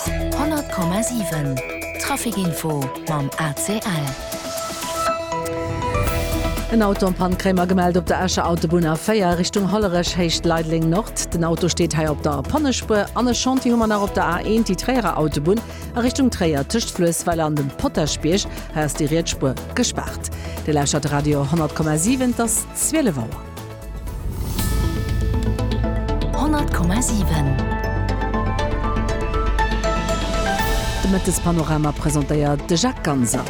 100,7 Trafic Info mam ACL. En Auto am Pannkréimer gemellt op der Escher Autobunn A4 Richtung Hollerech Héicht Leideleng Nord. Den Auto steet hei op der Pannespur an e Chantier hu mer nach op der A1 déi Tréierer Autobunn a Richtung Tréier tëscht Fluessweiler an dem Potaschbierg. Hei ass déi riets Spur gespaart. Dir lauschtert Radio 10,7 't ass 12 Auer. 100,7 De Mëttespanorama presentéiert de Jacques Ganser.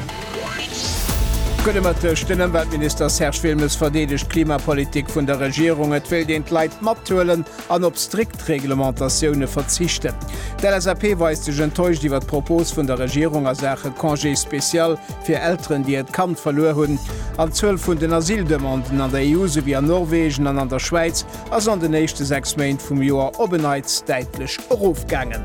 Gudde Mëtteg, Den Ëmweltminister Serge Wilmes verdeedegt d'Klimapolitik vun der Regierung. Et wéilt een d'Leit mathuelen an op strikt. d'Reglementatioune verzichten. D'LSAP weist sech enttäuscht iwwer d'Propos vun der Regierung a Saache Congé spécial fir Elteren, déi hiert Kand verluer hunn. An d'Zuel vun den Asyldemanden an der EU souwéi an Norwegen an an der Schwäiz ass an den éischte sechs Méint vum Joer op en Neits däitlech erofgaangen.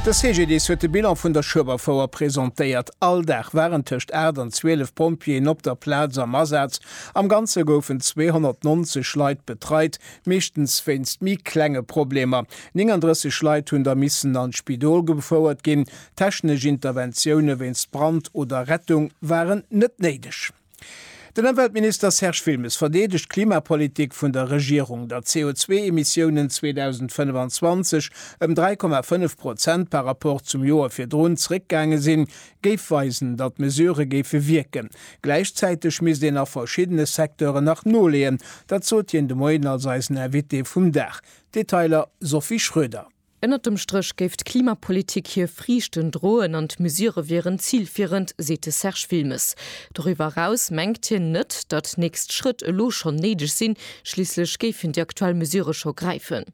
De CGDIS huet de Bilan vun der Schueberfouer presentéiert. All Dag waren tëscht 8 an 12 Pompjeeën op der Plaz am Asaz Am Ganze goufen 290 Leit betreit, meeschtens wéinst méi klenge Problemer. 39 Leit hunn da missen an d'Spidol gefouert ginn. Technesch Interventioune wéinst Brand oder Rettung waren net néideg. Den Ëmweltminister Serge Wilmes verdeedegt d'Klimapolitik vun der Regierung, datt CO2-Emissiounen 2025 ëm 3,5 Prozent par Rapport zum Joer virdrun zeréckgaange sinn, géif weisen, datt d'Mesurë géife wierken. Gläichzäiteg misst een a verschiddene Secteuren nach noleeën. Dat sot hien de Moien als eisen Invité vum Dag. Detailer, Sophie Schroeder. Ënnert dem Stréch géif d'Klimapolitik hir Friichten droen an d'Mesurë wieren zilfierend, seet de Serge Wilmes. Doriwwer eraus mengt hien net, datt nächst Schrëtt elo schonn néideg sinn, schliisslech géifen déi aktuell Mesurë scho gräifen.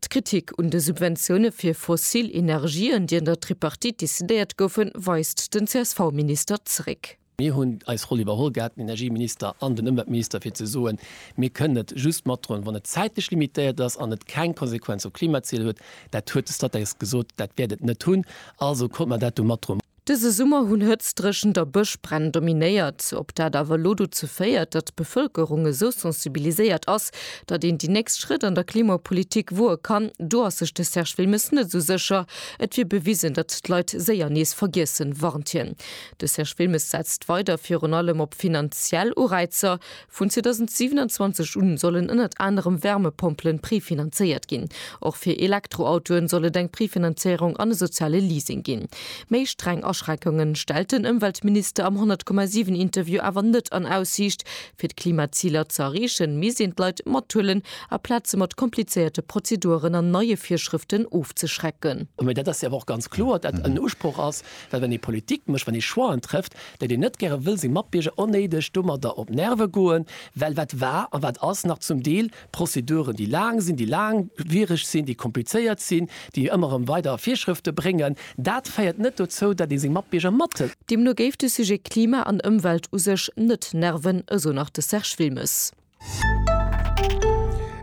D'Kritik un de Subventioune fir fossil Energien, déi an der Tripartite decidéiert goufen, weist den CSV-Minister zeréck. Mir hunn eis Roll iwwerholl gehat, den Energieminister an den Ëmweltminister, fir ze soen, mir kënnen et just matdroen, wann et zäitlech limitéiert ass an et keng Konsequenz op d'Klimaziler huet. Dat huet de Statec gesot, dat wäert et net hunn. Also konnte mer dat do matdroen. Dëse Summer hunn Hëtztregent a Bëschbränn dominéiert. Ob dat awer elo dozou féiert, datt d'Bevëlkerung esou sensibiliséiert ass, datt een déi nächst Schrëtt an der Klimapolitik woe kann, do ass sech de Serge Wilmes net esou sécher. Et wier bewisen, datt d'Leit séier nees vergiessen, warnt hien. De Serge Wilmes setzt weider virun allem op finanziell Ureizer. Vun 2027 un sollen ënnert anerem Wärmepompelen prefinanzéiert ginn. Och fir Elektroautoen soll et eng Prefinanzéierung an e soziale Leasing ginn. Méi streng Aschreckungen stellt den Ëmweltminister am 100,7 Interview awer net an Aussiicht. Fir d'Klimaziler ze erreechen, misst een d'Leit mathuelen a Plaze mat komplizéierte Prozeduren an neie Virschrëften ofzeschrecken. Mee dat ass jo awer och ganz kloer, datt dat en Usproch ass, well wann ee Politik mécht, wann ee Choixen trëfft, dat een net gäre wëll seng Matbierger onnéideg domadder op d'Nerve goen, well wat war a wat ass nach zum Deel Prozeduren, déi laang sinn, déi laangwiereg sinn, déi komplizéiert sinn, déi ëmmer erëm weider Virschrëfte bréngen, dat féiert net dozou, dat ee seng Matbierger mat. Deemno géif de Sujet Klima an Ëmwelt u sech net nerven, esou nach de Serge Wilmes.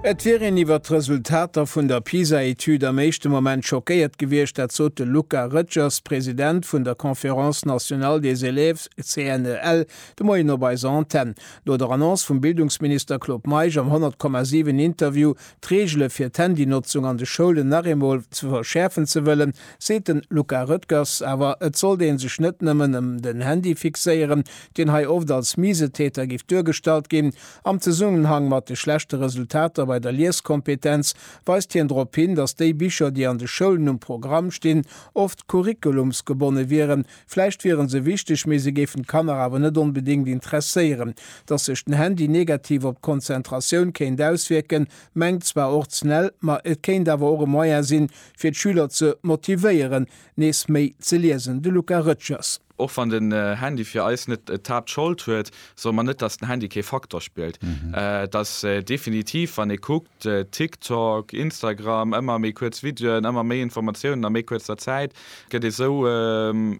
Et wier een iwwert d'Resultater vun der PISA-Etüd am éischte Moment schockéiert gewiescht. Dat sot de Luca Rëtschers, President vun der Conférence nationale des élèves, CNEL, de Moien op eiser Antenn. No der Annonce vum Bildungsminister Claude Meisch am 100,7 Interview, d'Reegele fir d'Handynotzung an de Schoulen nach eemol ze verschäerfen ze wëllen, Seet den Luca Roettgers, awer et sollt een sech net nëmmen em den Handy fixéieren, deen hei oft als Misetäter giff duergestallt ginn. Am Zesummenhang mat de schlechte Resultater bei der Lieskompetenz weist hien drop hin, datt déi Bicher, déi an de Schoulen um Programm stinn, oft curriculumsgebonne wieren. Vläicht wieren se wichteg, mee se géifen d'Kanner awer net onbedéngt interesséieren. Datt sech den Handy negativ op d'Konzentratioun kéint auswierken, mengt zwar och d'CNEL, ma et kéint awer och e Moyen sinn, fir d'Schüler ze motivéieren, nees méi ze liesen, de Luca Rëtschers. Och wann den Handy fir eis net d'Haaptschold huet, soe mer net, datt den Handy kee Faktor spillt. Et ass definitiv, wann ee kuckt, TikTok, Instagram, ëmmer méi kuerz Videoen, ëmmer méi Informatiounen a méi kuerzer Zäit, gëtt ee sou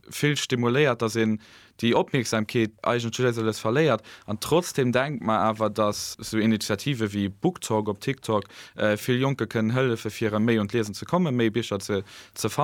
vill stimuléiert, datt een déi Opmierksamkeet eigentlech léiss a léiss verléiert an trotzdem denkt mer awer, dass sou Initiative wéi BookTok op TikTok vill Jonke kënnen hëllefe fir erëm méi un d'Liesen ze kommen, méi Bicher ze fannen.